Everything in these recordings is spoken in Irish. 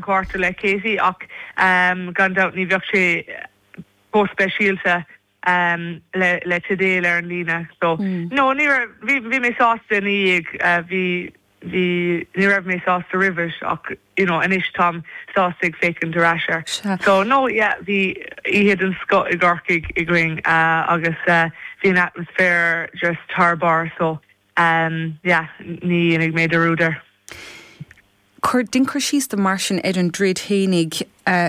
gcárta le Katie ach gan dabht ní bheadh sé chomh speisialta le teideal ar an líne so no ní raibh, bhí mé sásta ina dhiaidh, bhí, bhí, ní raibh mé sásta roimh it ach you know anois táim sásta ag féachaint ar ais air so no yeah bhí oíche den scoth i gCorcaigh againn agus bhí an atmaisféar just thar barr so yeah ní dhéanfaidh mé dearúd air. Dein cur síos dom mar sin ar an dtroid fhéinig.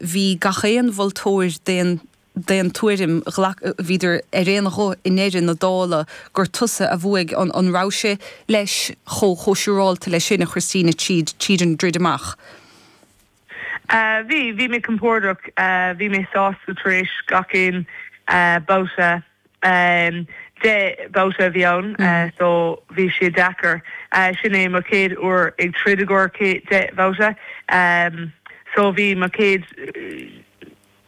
Bhí gach aon mholtóir d'aon tuairim, bhíodar ar aon ghuth i ndeireadh na dála gur tusa a bhuaigh. An rabhais-se, leis, chomh siúrálta leis sin, a Christina, tríd an dtroid amach? Bhí. Bhí mé compordach. Bhí mé sásta tar éis gach aon bhabhta. amh. Deich mbabhta a bhí ann so bhí sé deacair. Sin é mo chéad uair ag troid i gcomhair deich mbabhta so bhí mo chéad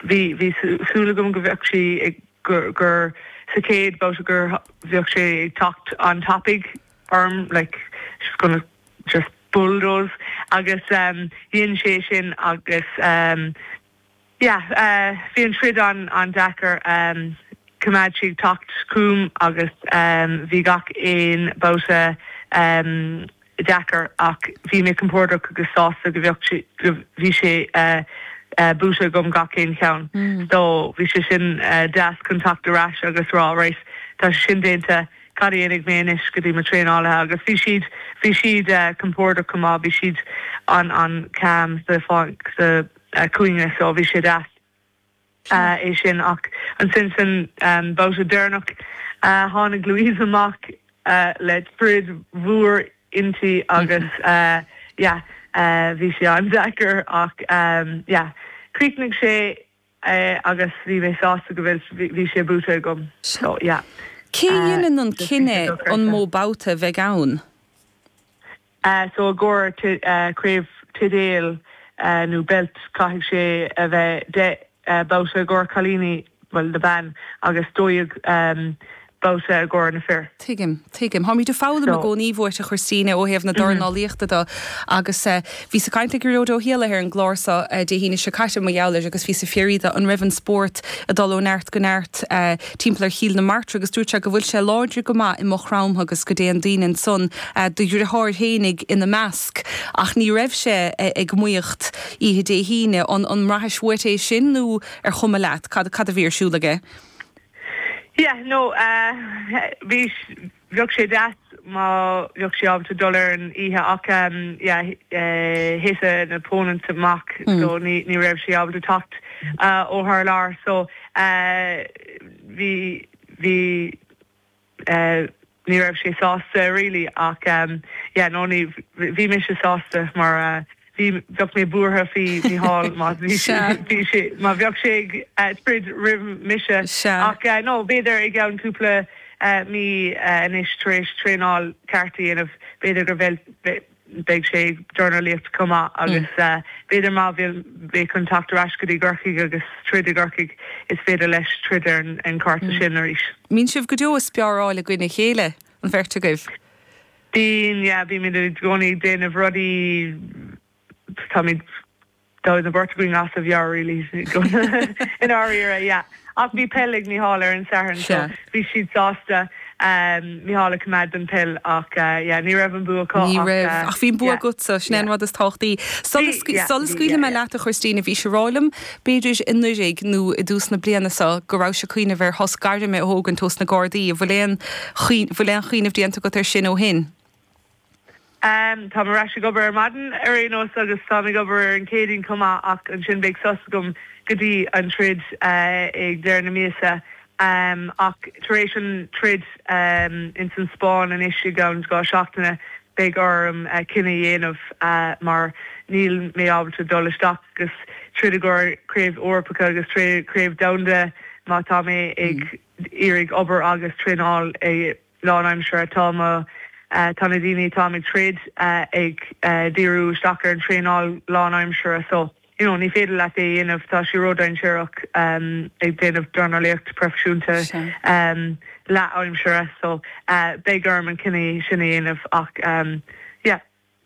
bhí bhí súil agam go bheadh sí ag gur sa chéad babhta gur bheadh sí ag teacht an-tapaidh orm like she's gonna just bulldoze agus dhein sí é sin agus. yeah bhí an troid an-deacair choimeád sí ag teacht chugam agus bhí gach aon babhta deacair ach bhí mé compordach agus sásta go, go bhí sé buaite agam gach aon cheann so bhí sé sin deas chun teacht ar ais agus rá right tá sé sin déanta cad a dhéanfaidh mé anois go dtí mo traenálaithe agus bhí siad bhí siad compordach go maith bhí siad an an calm sa sa chúinne so bhí sé deas é sin ach ansin san babhta deireanach tháinig Louise amach le sprid mhór inti agus yeah bhí sé an-deacair ach yeah chríochnaigh sé agus bhí mé sásta go bhí sé buaite agam so yeah. Cé a dhéanann an cinneadh an mó babhta a bheidh ann? So, i gcomhair craobh teideal nó beilt caithfidh sé a bheith deich mbabhta i gcomhair cailíní, bhuel, na mban, agus dó dhéag mbabhta i gcomhair na fir. Tuigim, tuigim. Táimid ag foghlaim i gcónaí uait, a Christina, ó thaobh na dornálaíochta do. Agus bhíos ag caint le Gearóid Ó hÉalaithe ar an gclár so Dé hAoine seo caite, mar gheall air, agus bhíos ag fiafraí do, an raibh an spórt ag dul ó neart go neart, timpeall ar Chill na Martra agus dúirt sé go bhfuil sé láidir go maith i Maigh Chromtha agus go dtéann daoine ansan, do dhriotháir fhéinig ina measc. Ach ní raibh sé ag maíocht oíche Dé hAoine. An mbraithfeá uait é sin nó ar chuma leat? Cad a bhí ar siúl aige? Yeah, no, eh, bhí. Bheadh sé deas má bheadh sé ábalta dul ar an oíche ach thit an opponent amach so ní raibh sé ábalta teacht ó thar lear so bhí, bhí, ní raibh sé sásta really ach yeah no ní, bhí mise sásta mar. Bhí, bheadh mé buartha faoi Mícheál má bhí sé, bhí sé, má bheadh sé ag troid roimh mise. Ach no, b'fhéidir i gceann cúpla mí anois tar éis traenáil ceart a dhéanamh, b'fhéidir go bheidh sé ag dornálaíocht chomh maith agus b'fhéidir má bhíonn, beidh chun teacht ar ais go dtí gCorcaigh agus troid i gCorcaigh, is féidir leis troid ar an chárta sin arís. Mbíonn sibh ag spáráil i gcoinne a chéile, an bheirt agaibh? Bíonn, yeah, bímid i gcónaí ag déanamh rudaí, táimid, táimid an bheirt againn an-ghnóthach, yeah, really, i ndáiríre, yeah. Ach bhí peil ag Mícheál ar an Satharn so bhí siad sásta Mícheál a choimeád don peil ach, yeah, ní raibh an bua acu Ní ach, raibh, ach bhí an bua yeah, agatsa, sin é an yeah. rud is tábhachtaí. Bhí, Sula, yeah, sula bhí, scaoilfidh yeah, mé yeah. leat, a Christina, bhís ag rá liom B'fhéidir anuiridh nó i dtús na bliana so go rabhais a' cuimhneamh ar shos gairme a thógaint ó sna gárdaí. An bhfuil aon, bhfuil aon chuimhneamh déanta agat ar sin ó shin? Ámh, táim ar ais ag obair ar maidin ar aon nós agus táim ag obair ar an Chéadaoin chomh maith ach ansin beidh sos agam go dtí an troid ag deireadh na míosa. Ámh, ach tar éis an troid ins an Spáinn anois i gceann dhá seachtaine, beidh orm cinneadh a dhéanamh mar níl mé ábalta dul isteach agus troid i gcomhair craobh Eorpacha agus craobh domhanda má tá mé ag iarraidh obair agus traenáil lánaimseartha. Tá mo tá na daoine atáim ag troid ag díriú isteach ar an traenáil lánaimseartha so. you know ní féidir leat é a dhéanamh, tá sé ródhainséarach ag déanamh dornálaíocht proifisiúnta leath-aimsire so beidh orm an cinneadh sin a dhéanamh ach yeah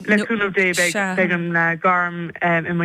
le cúnamh Dé beidh an gairm i mo.